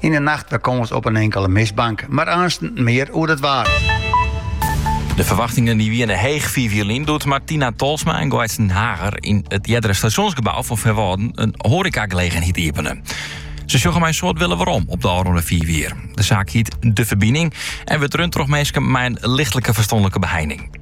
Yn 'e nacht wer kâns op in inkele mistbank, mar aansten mear oer it waar. De ferwachtingen dy wiene heech fiif jier lyn doe't Martina Tolsma en Goaitsen Hager yn it eardere stasjonsgebou fan Feanwâlden in hoarekagelegenheid iepenen. Se sjogge mei in soad wille werom op de ôfrûne fiif jier. De saak hiet De Ferbining en wurdt rund troch minsken mei in lichtlike ferstanlike beheining.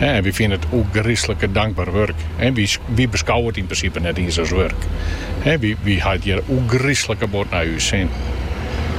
En wy fine it ûngrislike dankber wurk. En wy, wy beskouwe it yn prinsipe net iens as wurk. En wy, wy ha it hjir ûngrislike bot nei ús sin.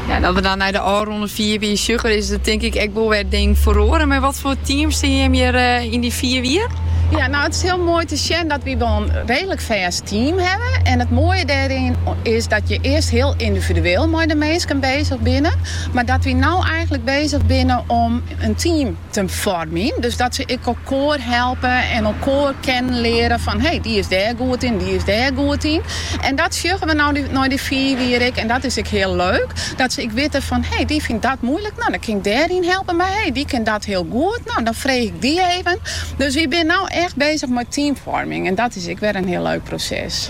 Ja, at we dan nei de ôfrûne fiif jier sjogge, is der tink ik ek wol wer ding feroare. Mar wat foar team sjogge jimme eh, yn dy fiif jier? Ja, nou it is heel moai te sjen dat wy wol in redelik fêst team hawwe. En it moaie dêryn is dat je earst heel yndividueel mei de minsken bezich binne. Mar dat wy nou eigenlik bezich binne om in team te foarmjen. Dus dat se ek elkoar helpe en elkoar kennen leare fan hey, dy is dêr goed yn, dy is dêr goed yn. En dat sjogge we nou nei dy fiif jier ek en dat is ek heel leuk. Dat se ek witte fan hey, dy fynt dat moeilik, nou dan kin ik dêr yn helpe. Mar hey, dy kin dat heel goed, nou dan freegje ik dy even. Dus we binne nou echt bezich mei teamfoarming en dat is ek wer in heel leuk proses.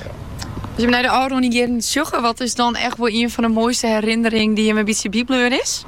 As jimme nei de ôfrûne jierren sjogge, wat is dan echt wol ien fan de moaiste herinnering dy jimme bytsje bybleaun is?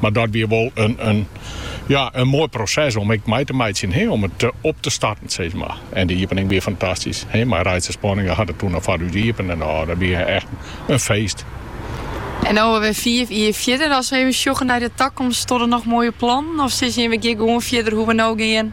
Mar dat wie wol in ja, in moai proses om ek mei te meitsjen, he, om it op te starten, sis mar. En de iepening wie fantastysk, he, mei Reitse Spanninga hat it toen al foar ús iepene en oh, dat wie echt in feest. En no wer fiif jier fierder, as we even sjogge nei de takomst, stean der noch moaie plannen of sizze jimme we gean gewoan fierder hoe we no gean?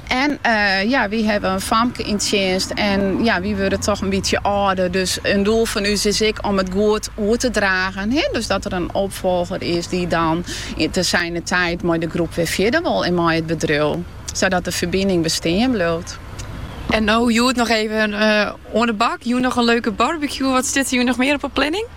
En ja, wy hawwe in famke yn tsjinst en ja, wy wurde toch in bytsje âlder. Dus in doel fan ús is ek om it goed oer te dragen. He? Dus dat der in opfolger is dy dan te zijner tijd mei de groep wer fierder wol en mei it bedriuw. Zodat De Ferbining bestean bliuwt. En no hjoed noch even oan de bak. Hjoed noch in leuke barbecue. Wat stiet der hjoed noch mear op de planning?